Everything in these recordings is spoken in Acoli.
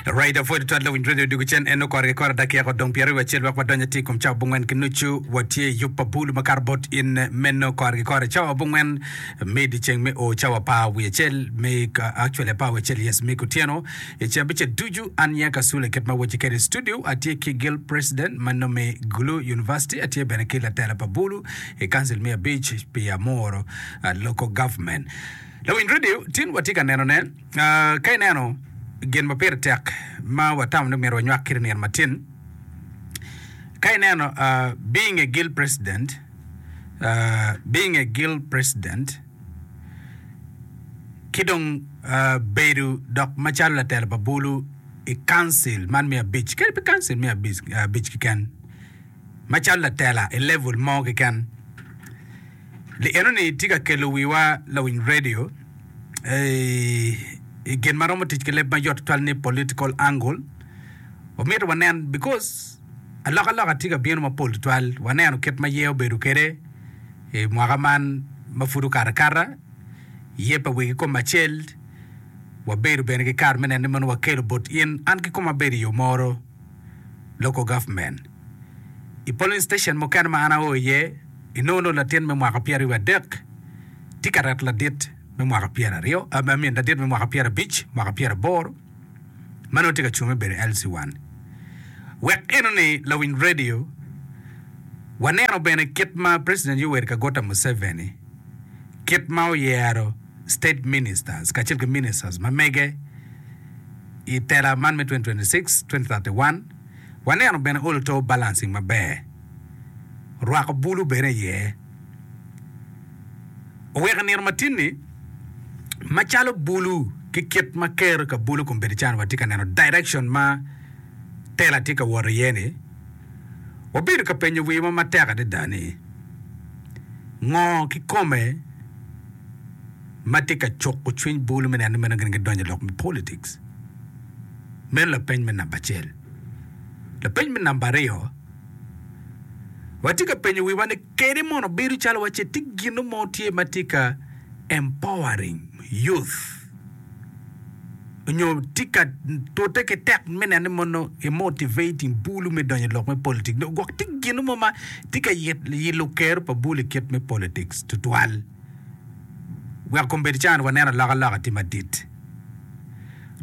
Raida pwod twal lawiny radio dwogo cen en okoro ki koro dakika odong pyeraryo acel wek wadonyo atir kom cawa bongwen ki nucu watye i yub pa bulu makato bot in meno koro ki koro cawa bongwen me dyeceng me o cawa pa wi acel me actually pa wi acel yes me kutyeno i ce abice ducu an ya ka sula kit ma wacci kede i studio atye ki gil president ma nome gulu university atye bene ki latela pa bulu i kancil me abic pi amoro uh, local government Lawiny redio, tin watye ka nenone. Ka ineno gin ma pire tek ma watamo ni omyero wanywak kit i nino matin, ka ineno being a guild president, being a guild president, ki dong bedo dok macalo latelo pa bulu i council man me abic, kadi pe council me abic keken, macalo latela i level mo keken. Li enoni tye ka kelo wiwa lawiny radio i gin ma romo tic ki leb mayot tutwal ni political angle. Omyero wanen because alokaloka tye ka bino mapol tutwal. Waneno kit ma ye obedo kwede i mwaka man ma pud okato akata, ye pa wegi kome acel. Wabedo bene ki kare me neno ni mono wakelo bot in an ki koma abedo i yo moro. Local Government. I polling station mukene ma an ao iye, inongo nongo latin me mwaka pyeraryo adek tye ka reto ladit me mwaka pyeraryo, I mean ladit me mwaka pyerabic, mwaka pyeraboro ma nongo tye ka cung me bedo LC1. Wek inoni lawiny radio, waneno bene kit ma President Yoweri Kaguta Museveni kit ma oyero State Ministers kacel ki Ministers ma mege i tela man me 2026-2031. Waneno bene olo too balancing maber, rwako bulu bene iye. Oweko nino ma tini macalo bulu ki kit ma kero ka bulu kun bedo calo watye ka neno direction ma tela tye ka wot iye ni, wabedo ka penyo wiwa matek adada ni, ngo kikome ma tye ka cuko cwiny bulu me neno meno gin gidonyo i lok me politics? Meno lapeny me namba acel. Lapeny me namba aryo, watye ka penyo wiwa ni kene mono bedo calo wacce tye gino mo tye ma tye ka empowering youth? onyo tye ka tute ki tek me neno ni mono i motivating bulu me donyo i lok me politic nyo gwok tye gino mo ma tye ka yilo kero pa bulu i kit me politics tutwal wek kom bed can waneno aloka loka tye madit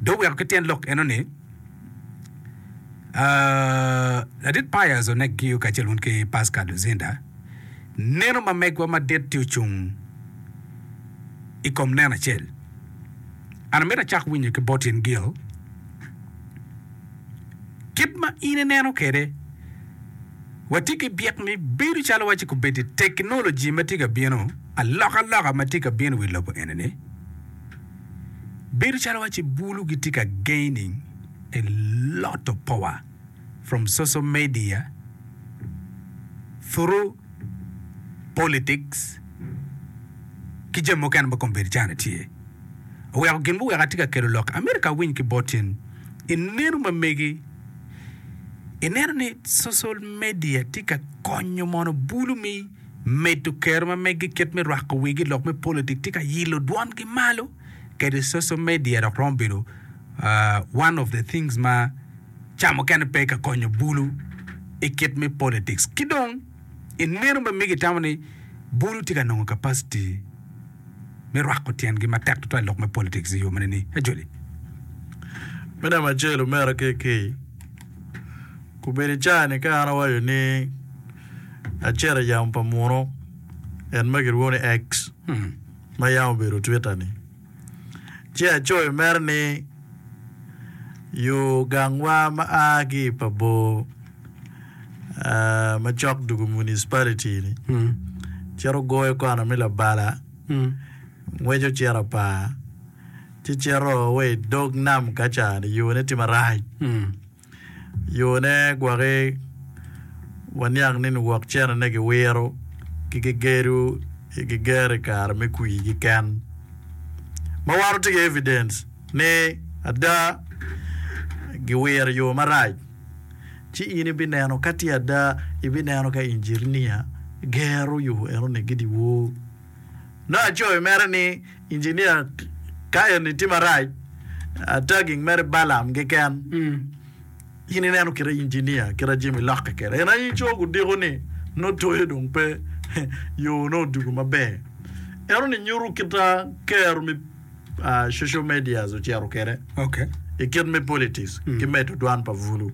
do weko ki tyen lok eno ni ladit pius onek giyo kacel wun ki pascal luzinda neno ma megwa madit tye ocung i kom neno acel. An amito acak winyo ki bot in Gil, kit ma in ineno kwede. Watye ki byek ni bedo calo waci kubeddi teknoloji ma tye ka bino, alokaloka ma tye ka bino i wi lobo enini, bedo calo waci bulu gitye ka gaining a lot of power. from social media through politics ki jami mukene ma komedi calo tye oweko gin guweko atye ka kelo lok America awiny ki bot in ineno ma megi ineno ni social media tye ka konyo mono bulu me medo kero ma megi kit me rwako wigi lok me politic tye ka ilo dwon gi malo kede social media dok romo bedo one of the things ma ca mukene pe ka konyo bulu i kit me politics. Ki dong i neno ma mege itamo ni bulu tye ka nongo capacity me rwako tyengi matek tutwal i lok me politics i yo mene ni Ajoli? Me namba acel omera KK, kobedi ca ni ka an awaco ni acito i yamo pa muno en ma kilwongo ni X, ma yam obedo Twitter-ni, ci acoyo mere ni, Yo gangwa ma a ki i pa bor ma cok dwogo Municipality-ni cito goyo kona me Labala, ngweco cito Apaa, ci cito wa i dog nam kaca-ni, yone tye marac. Yone gwaki waniang ni niwok cene-ne giwiro ki gigedo i giger i kare me kwirgi ken, ma wan watye ki evidens ni ada giwiro i yo marac. Ci in ibineno ka tye ada, ibineno ka injirinia gero yo enoni gidye wor. Nongo acoyo mere ni. Engineer, Ka eni tye marac, tagging mere Balaam keken. In ineno kite engineer kit a Jimmy lokke kede. En aye cogo odiko ni nongo toyo dong pe yo nongo odugo maber. Eno ni nyuto kit a kero me social medias ocito kede i kit me politics ki medo dwan pa bulu.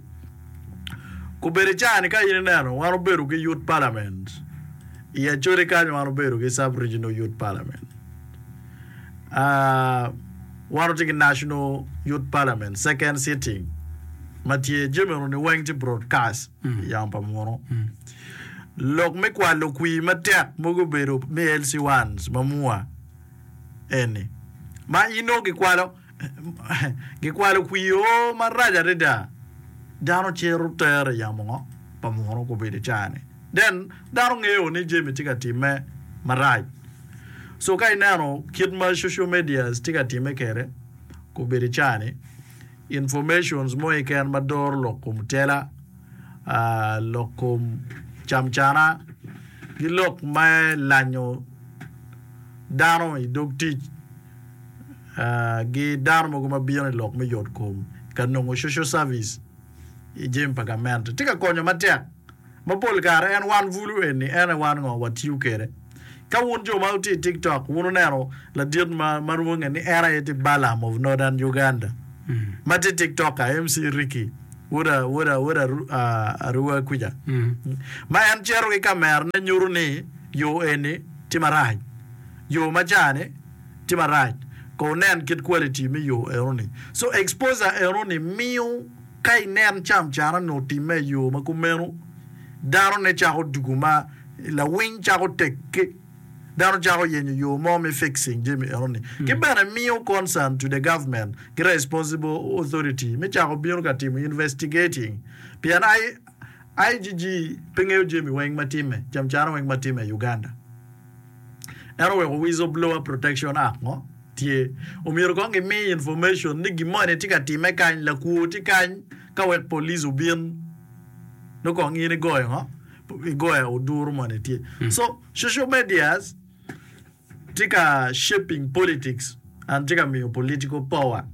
Gubedo caa-ni ka in ineno wan obedo ki Youth Parliament i Acholi kany wan obedo ki Sub Regional Youth Parliament uh, wan otye ki National Youth Parliament second sitting ma tye jami runi weng tye broadcast i yamo pa munu lok me kwalo kwii matek mogo obedo me LC1 ma mua eni ma in nongo gikwalo Gikwalo kwio marac adada. Dano cito tere yamo ngo pa muno gubedo icane then dano ngeyo ni Jemi tye ka time marac so ka ineno kit ma social medias tye ka time kede gubedo icane informations mo keken ma doro lok kom tela lok kom camcana ki lok me lanyo dano idog tic. gi dano mogo ma bino i lok me yotkom ka nongo coco cavic i jami pa gamente tye ka konyo matek. Ma pol kare en wan bulu eni en aye wan ngo watiyo kwede. Ka wun jo ma wutye i tiktok wun wuneno ladit ma ma rwonge ni en aye tye Balaam of Northern Uganda ma tye tiktoker MC Ricky woda woda woda Arua kwica ma en cito ki kamerane nyuto ni yo eni tye marac yo ma ca ni tye marac ko wunen kit quality me yo enoni. So exposure enoni miyo ka inen cam cara nyo timme i yo ma kumeno dano ne cako dugu ma lawiny cako tekke dano cako yenyo yo mo me fixing jami enoni ki bene miyo concern to the government ki responsible authority me cako bino ka timo investigating pien IGG pe ngeyo jami weng ma timme cam cara weng ma timme i Uganda. En oweko Whistleblower Protection Act mo tye. Omyero kong gimi information ni gin moni tye ka timme kany, lakwo tye kany ka wek police obin nongo kong in igoyo ngo? Igoyo oduru moni tye. So social medias tye ka shaping politics. An tye ka miyo political power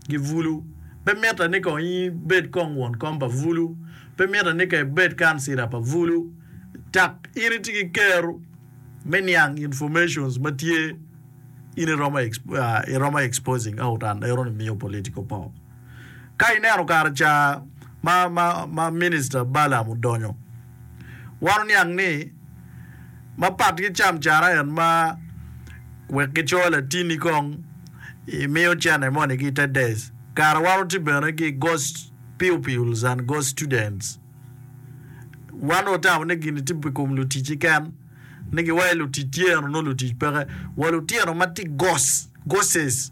gi bulu. Pe mitte ni kong ibed kong won kom pa bulu. Pe mitte ni kong ibed kancila pa bulu. Dak in itye ki kero me niang informations ma tye in iromo exposing out and ero ni miyo political power. Ka ineno kare ca ma, ma, ma Minista Balaam odonyo, wan oniang ni, mapat ki camcara en ma wek gicoyo latini kong, imiyo cene moni ki i te dec, kara wan oti bene ki ghost pupils and ghost students. Wan dong otamo ni gini tye pi kom luticci ken, ni giwaye lutic tyeno nongo lutic peke, wa lutino ma tye ghost, ghostes.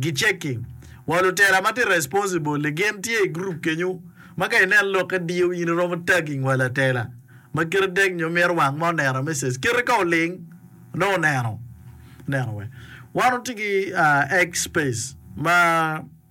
gicekki. Wa lutera ma tye responsible ni gin tye i group kenyu ma ka inen lokke diyo in iromo tagging wa latela ma kite dek nyo mito wang ma oneno message kite ka oling nongo oneno. Ineno wee. Wan watye ki X space ma.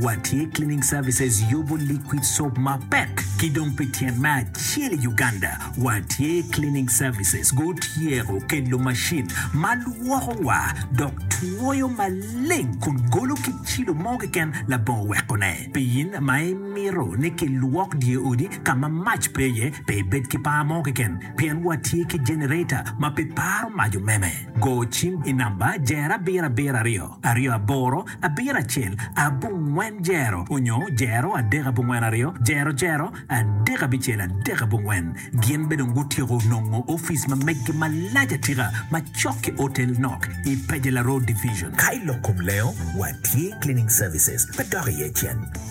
Watye Cleaning Services yubo liquid soap mapek ki dong pi tyen me acel i Uganda. Watye Cleaning Services gutyeko kelo macin ma lwoko wa dok twoyo maleng kun golo ki cilo mo keken labongo wekone. Pi in ma imito ni kilwok dye odi ka ma mac pe iye, pe ibed ki par mo keken pien watye ki generator ma pe paro mac omeme. Go cim i namba Jera abiro abiro aryo aryo aboro abiro acel abongwen jero onyo jero adek abongwen aryo jero jero adek abicel adek abongwen. Gin be dong gutyeko nongo office ma meggi malac atika ma cok ki Otel Nok i Pejela Road Division. Ka ilok kom lengo, watye cleaning services pe dok iye cen.